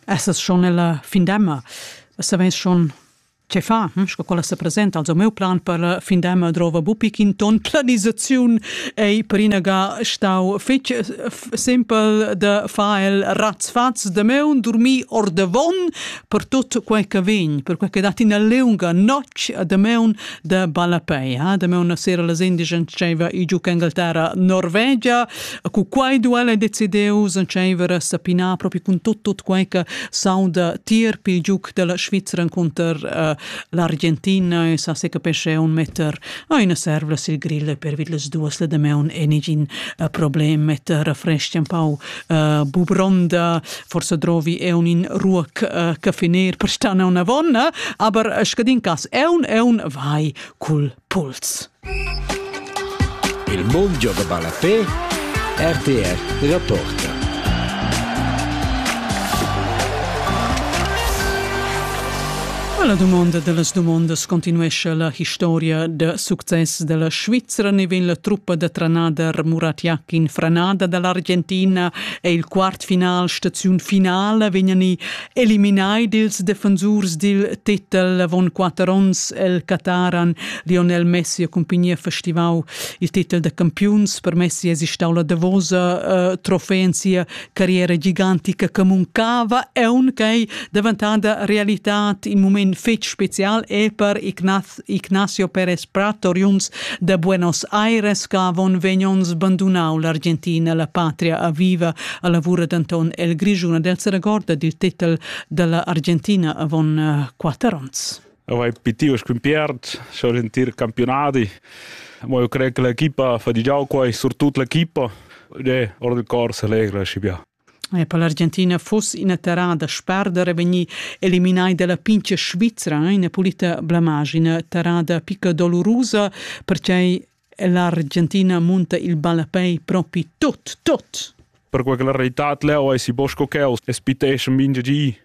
Essas schon nella findemma? Saveis schon che fa? Hm? Sco quella se presenta, also meu plan per la findemma drova bupi in ton planisaziun ei per inaga stau fetg simpel de fa el razzfaz de meu dormi or de von per tot quel che vegn, per quel che dat ina leunga notg de meu de ballapei, eh? de meu na sera la indigent diceva i giù che Inghilterra Norvegia E cu quai duel ei decidiu s'entscheiver sa pinar propi cun tot tot quei che sauda tier pil giuc della Svizra cunter uh, l'Argentina e sa se capesce un metter oh, ina servla sil grill per vid les duas le demeun e nigin uh, problem metter refreschi un pau uh, bubronda forse drovi e un in ruoc uh, caffiner per stana una vonna aber scadin cas è un è un vai cul Puls. Il mund gioga ballafé, RTR rapporta. La domanda dellas domondas continuescha la historia da success della Svizzera ne vegn la truppa da tranader Muratiak in franada dall'Argentina e il quart final staziun finale vegnan i Eliminai dils defensurs dil titel avon quater onns el Qataran Lionel Messi ha cumpignia festivau il titel da campiuns. Per Messi es stau la davosa uh, trofea in sia carriera gigantica che muncava e unquei daventada realità in moment fetg special e per Ignaz Ignacio Pérez Prat, oriunds de Buenos Aires, che avon vegn onns bandunau l'Argentina, la patria aviva, a lavura denton el Grigiun, el se regorda dil titel della Argentina avon uh, quatter onns. Avei pitiu scumpiert, schon in tir campionati. Mo io credo che l'equipa fa di già qua, soprattutto l'equipa, de ora del corso allegra, si bia. E per l'Argentina fuss ina terrada sperder e vegnir eliminai dalla pintga Svizra ina pulita blamage, ina terrada picca dolurusa, perquei è l'Argentina munta il ballapei propi tut, tut. Per quella reitad leu eisi bosco cheu e spiteschan mintga gi.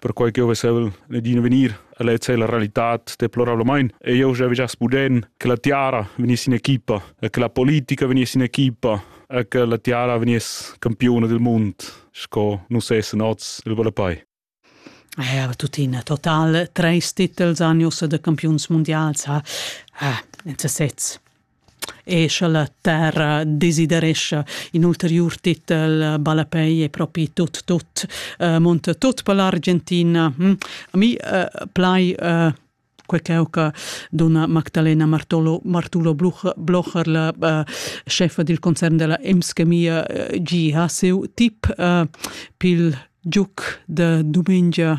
perquai ch'jeu vesel d'in vegnir a lezer la realitad deplorablamain e jeu jeu giast puden che la tiara vegniss in equipa e che la politica vegniss in equipa e che la tiara vegniss campiuna del mund sco nus essen oz il Volapai. Er tuttina total treis titels anjos de campiuns mundials ha, ha in sesez. e scha la terra desiderescha in ulteriur titel ballapei e propi tut tut uh, munta tut per l'Argentina. Hm? A mi uh, plai uh, quei cheu che dona Magdalena Martolo, Martulo Blocher, la uh, chefa dil concern della Emskemia, uh, gi ha seu tip uh, pil giuc de dumengia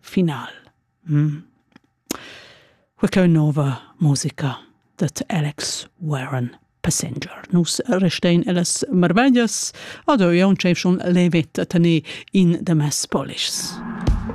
final. Mm. Quecleu nova musica dat Alex Warren Passenger. Nus restein ellas marveglias, ado io un tschefschun levetta tene in de mes polischs.